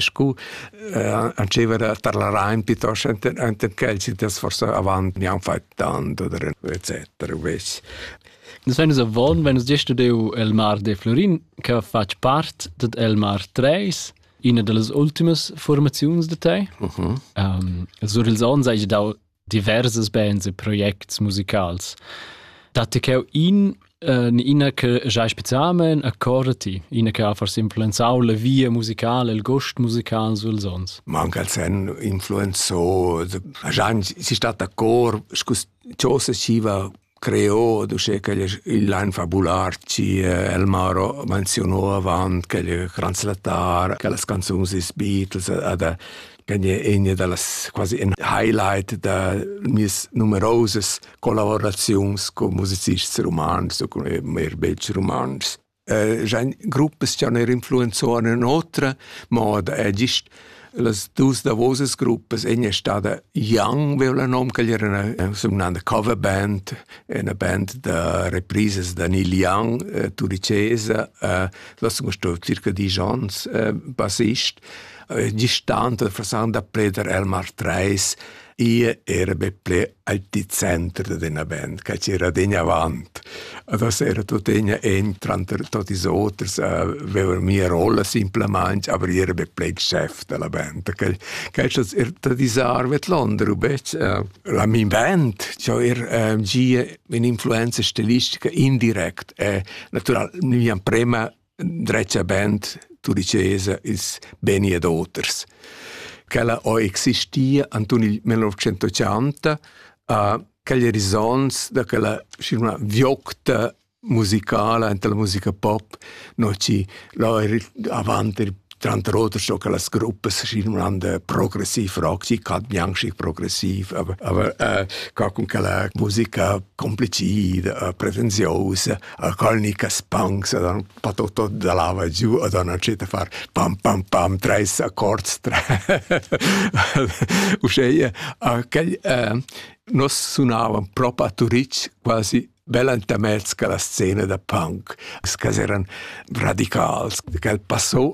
scu eh, antscheva da tar la Rain piuttost enten quels das forse avant mi han fait tanto oder etc. Ves. Nus venus avon, venus gest deu el mar de Florin, che fatg part ded el mar 3, ina dallas ultimas formaziuns de te. Uh -huh. um, sur ils onns hai dau diverses bands e projects musicals. Datti cheu in Uh, ina che giai specialment accordati, ina che ha forse influenzau la via musicale, il gost musical sul sons. Ma anche al sen influenzò, si sta d'accord, scusa, cosa siva Creo d'uschè ch'el es ün lain fabular chi El Maro menzionou avant ch'el es translattar, che las canzuns dils Beatles ad ch'en egna da las quasi in highlight da mieas numerosas collaboraziuns cun musicists rumantschs u cun eir bels rumantschs. J'hain gruppas cha neir influenzuan ün'otra moda e gist las duos davosas gruppas, ena è stada Young, veo la nom, quel era sun mnanda cover band, ena band da reprisas da Neil Young, äh, turicesa, äh, là sun sto circa disch ons äh, bassist. Äh, gist tant da Frasan da Preder Elmar Treis, Io era be ple al di center d'üna band, che c'era degna avant. Adesso era tutt'egna en tranter tutti ils oters a vever mia rolla simplamaing, aber io era be ple il chef della band. Che questo er da disarvet l'onder,bec eh, la min band, ciò er eh, gia un'influenza stilistica indirect e natural mi am prema dretga band, tu dicesa, ils beni ed oters. Quella ho existia anton il 1980 a quegli horizonts da quella una viocta musicala entre la musica pop, no ci là avanti tranter oters so che las gruppe signande progressiv rock, ci cat bianchi progressiv, aber, aber äh, ca con quella musica complicida, äh, pretenziosa, a colnicas punks ed han fatto tot da lava giu ed han entschiet a far pam pam pam treis accords uschè quel eh, nos sunavan propa a Turitg quasi bella intermezzo che la scena da punk, che eran radicals, che passò